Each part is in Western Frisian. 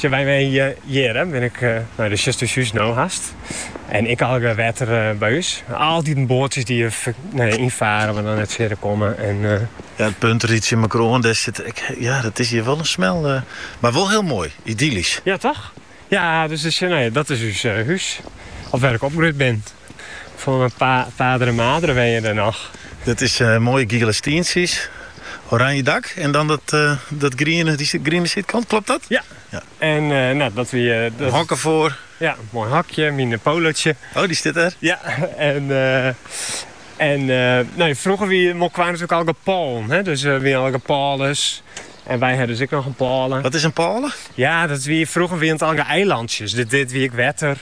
Sjen wy mei hjirre bin ik nei do sjochst ús hûs no hast. En ek allegear wetter by ús. Altyd in boatsjes dy't hjir ynfarre mar dan net fierder komme. Ja, it punt reitsje mekoar oan. Dêr sit ek. Ja, dat is hjir wol in smel. Mar wol hiel moai. Idyllysk. Ja toch? Ja, dus dat is ús hûs. Of wêr ik opgroeid bin. En myn padre madre wenje der noch. Dat is moaie giele stientsjes, oranje dak en dan dat griene, dy griene sydkant, klopt dat? Ja. Ja. En nou, dat wie dat. Hok derfoar. Ja, moai hokje, myn Polootsje. Oh, dy stiet der? Ja, en en no froeger wie Molkwar natuerlik allegear pôlen, hè? dus wie allegear pôlen. En wy hawwe dus ek noch in pôle. Wat is in pôle? Ja, dat wie, froeger wie it allegear eilantsjes. Dit, dit wie ek wetter.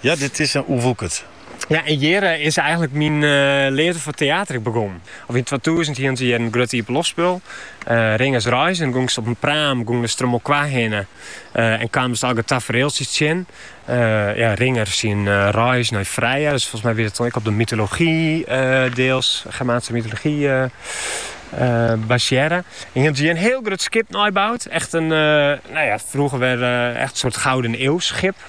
Ja, dit is oerwoekere. Ja, en hjir is eigenlik myn leafde foar teater ek begonnen. Of yn twatûzen hienen se hjir in grut iepenloftspul, Ringers Reis, en gongst op in praam, gongest der om Molkwar hinne en kaamst allegear tafereeltsjes tsjin. Ja, Ringer syn reis nei Freya, dus folgens my wie dat dan ek op de mytology deels, Germaanse mytology basearre. En hienen se hjir in hiel grut skip neiboud, echt in, nou ja, froeger wer echt in soart gouden eeuwskip.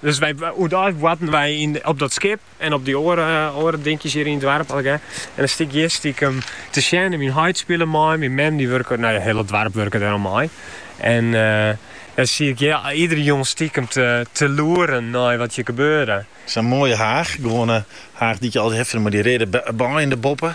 Dus wy, oerdeis boarten wy yn, op dat skip en op dy oare, oare dinkjes hjir yn it doarp allegear. En dan stie ik hjir stikem te sjen en myn heit spile mei. Myn mem dy wurke, nou ja, hiel it doarp wurke deroan mei. En dan stie ik hjir iedere jûn stikem te, te loeren nei wat hjir gebeurde. Sa'n moaie haach, gewoane haach dy't je altyd hawwe fûn mei dy reade beien derboppe.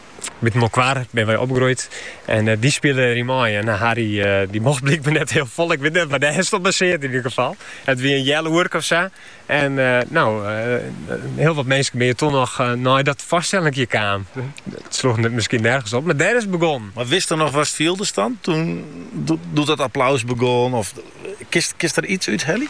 Mei Molkwar binne wy opgroeid en dy spile der yn mei. En Harry dy mocht blykber net hiel fol, ik wit net wêr't dat op basearre is yn ieder gefal. It wie in heal oerke of sa. En no, hiel wat minsken binne toch noch nei dat foarstellinkje kaam. It sloech miskien nergens op, mar dêr is it begonnen. Mar witst noch watst fieldest dan, doe't dat applaus begûn of kinst der iets út helje?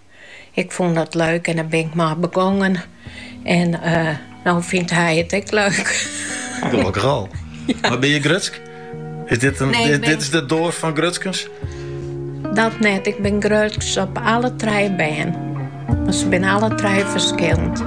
Ik fûn dat leuk en dêr bin ik mei begongen. En no fynt hy it ek leuk. Gelokkich al. Mar binne je grutsk? Is dit, in, nee, dit, bin... dit, is de doas fan grutskens? Dat net. Ik bin grutsk op alle trije bern. Mar se binne alle trije ferskillend.